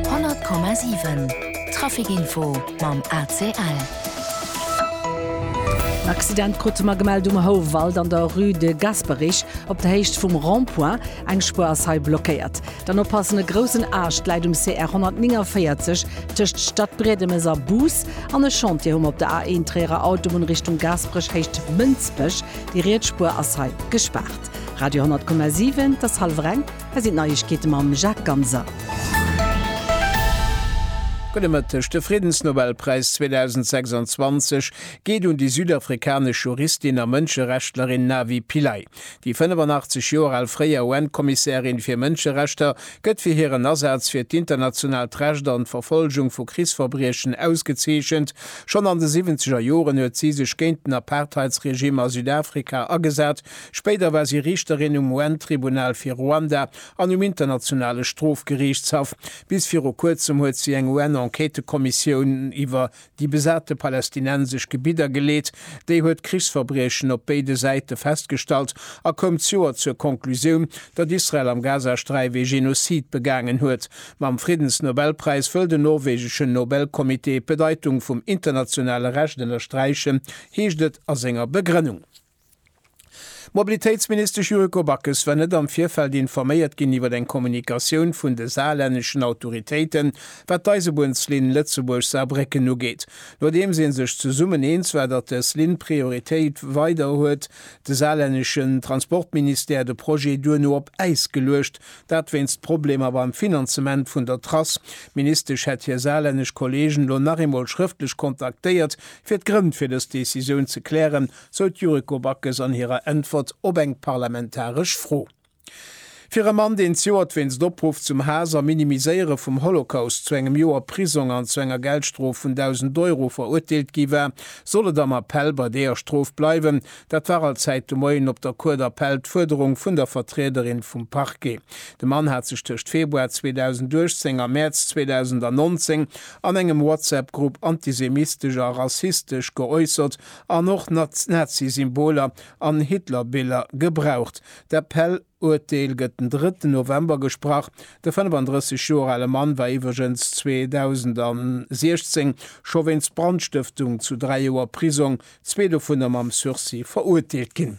100,7 Traficinfo mam ACL. En Accident krute mer gemellt um Houwald an der Rue de Gasperich op der Héicht vum Rond-point. Eng Spuer ass hei blockéiert. Dann oppassen, e groussen Aascht läit um CR 149 tëscht Stadbriedemes a Bus an e Chantier hu mer op der A1 Tréierer Autobunn Richtung Gasperich Héicht Mënsbech. Déi riets Spuer ass hei gespaart. Radio 10,7 Et ass hallwer eng. Hei sinn d'Neiegkeete mam Jacques Ganser. Gudde Mëtteg, De Friddensnobelpräis 2026 geet un déi südafrikanesch Juristin a Mënscherechtlerin Navi Pillay. Déi 85 Joer al fréier UN-Kommissärin fir Mënscherechter gëtt fir hiren Asaz fir d'internationaalt Recht an d'Verfolgung vu Krichsverbriechen ausgezeechent. Schonn an de siwwenzeger Joren huet si sech géint den Apartheidsregime a Südafrika agesat. Spéider war si Riichterin um UN-Tribunal fir Ruanda an um Internationale Strofgeriichtshaff. Bis viru Kuerzem huet si eng UN-Enquêtekommissioun iwwer déi besate palästinensesch Gebidder geleet. Déi huet Krichsverbriechen op béide Säite festgestallt a koum d'Joer zur Konklusioun, datt Israel am Gazasträif ee Genozid begaangen huet. Mam Friddensnobelpräis wëll den norwegeschen Nobelcomité d'Bedeitung vum internationale Recht ënnersträichen, heescht et a senger Begrënnung. D'Mobilitéitsministesch Yuriko Backes war net am Virfeld informéiert ginn iwwer eng Kommunikatioun vun de saarlänneschen Autoritéiten, wat d'Eisebunnslinn Lëtzebuerg-Saarbrécken ugeet. Nodeems ee sech zesummen eens war, datt dës Linn Prioritéit weider huet de saarlänneschen Transportministère de Projet duerno op Äis geluecht, dat wéinst Problemer beim Finanzement vun der Trass. D'Ministesch hätt hir saarlännesch Kolleegen elo nach eemol schrëftlech kontaktéiert, fir d'Grënn fir dës Decisioun ze klären sou d'Yuriko Backes an hirer Äntwert op eng parlamentaresch Fro. Fir e Mann, deen z'Joert wéinst Opruff zum Haass a Minimiséiere vum Holocaust zu engem Joer Prisong an zu enger Geldstrof vun 1.000 Euro verurteelt gi war, soll et am Appell bei deeër Strof bleiwen. Dat war all Zäit de Moien op der Cour d'Appel d'Fuerderung vun der Vertriederin vum Parquet. De Mann hat sech tëscht Februar 2018 a Mäerz 2019 an engem WhatsApp-Grupp antisemistesch a rassistesch geäussert An och Nazi-Symboler an Hitler-Biller gebraucht. D'Appel-Uerteel gëtt den drëtten November gesprach. De 35 Joer ale Mann war iwwregens 2016 scho wéinst Brandstëftung zu dräi Joer Prisong, zwee dovunner mam Sursis, verurteelt ginn.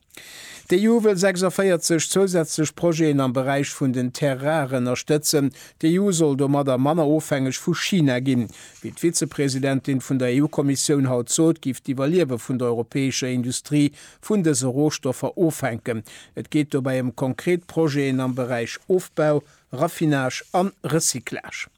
D'EU wëll 46 zousätzlech Projeten am Beräich vun den Terres rares ënnerstëtzen. D'EU soll domadder manner ofhängeg vu China ginn. Wéi d'Vizepresidentin vun der EU-Kommissioun haut sot, géif d'Iwwerliewe vun der europäescher Industrie vun dëse Rohstoffer ofhänken. Et geet dobäi ëm konkret Projeten am Beräich Ofbau, Raffinage an Recyclage.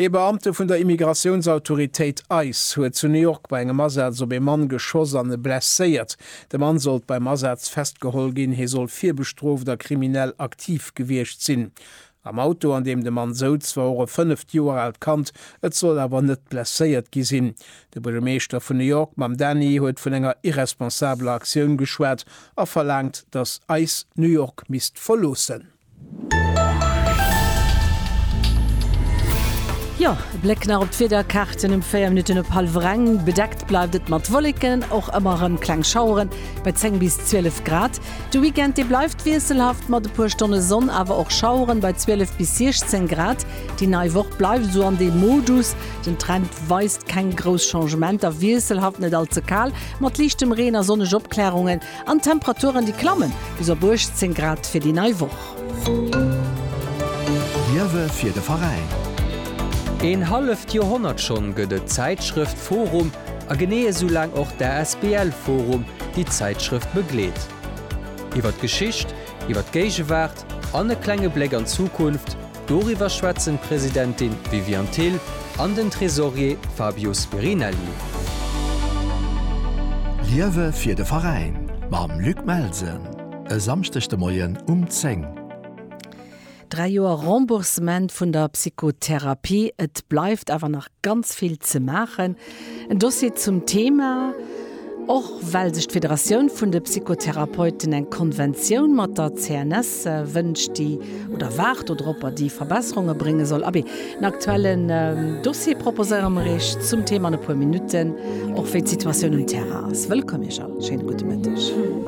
Ee Beamte vun der Immigratiounsautoritéit ice huet zu New York bei engem Asaz op ee Mann geschoss an e blesséiert. De Mann sollt beim Asaz festgeholl ginn. Hie soll virbestrooft a kriminell aktiv gewiescht sinn. Am Auto, an deem de Mann souz, war och e fënneft Joer aalt Kand. Et soll awer net blesséiert gi sinn. De Buergermeeschter vun New York Mamdani huet vun enger irresponsabeler Aktioun geschwat a verlaangt, datt ice New York misst verloossen. Jo, e Bléck nach op d'Wiederkaarten um 4 Minutten op hallwer eng. Bedeckt bleift et mat Wolleken, och ëmmer erëm kleng Schaueren bei 10 bis 12 Grad. De Weekend, dee bleift wiesselhaft mat e puer Stonne Sonn, awer och Schaueren bei 12 bis 16 Grad. Déi nei Woch bleift esou an deem Modus, den Trend weist keng grouss Changementer, wiesselhaft, net all ze kal, mat liichtem Reen a sonneg Opklärungen. An d'Temperaturen, déi klammen bis op 18 Grad fir déi nei Woch. Liewe fir de Veräin. Een halleft Joerhonnert schonn gëtt et d'Zäitschrëft forum a genee esou laang och d'ASBL forum, déi d'Zäitschrëft begleet. Iwwer d'Geschicht, iwwer d'Géigewaart an e klenge Bléck an d'Zukunft. Doriwwer schwätzen d'Presidentin Viviane Thill an den Tresorier Fabio Spirinelli. Liewe fir de Veräin mam Luc Melsen e Samschdeg de Moien um 10. Dräi Joer Remboursement vun der Psychotherapie, et bleift awer nach. Ganz vill ze maachen. En Dossier zum Thema, och well sech d'Federatioun vun de Psychotherapeuten eng Konventioun mat der CNS wënscht, déi, oder waart do dropper, déi Verbesserunge brénge soll. Abee, en aktuellen Dossier proposéiere mer Iech zum Thema an e puer Minutten, och wéi d'Situatioun um Terrain ass. Wëllkomm Iech all, schéine gudde Mëtteg.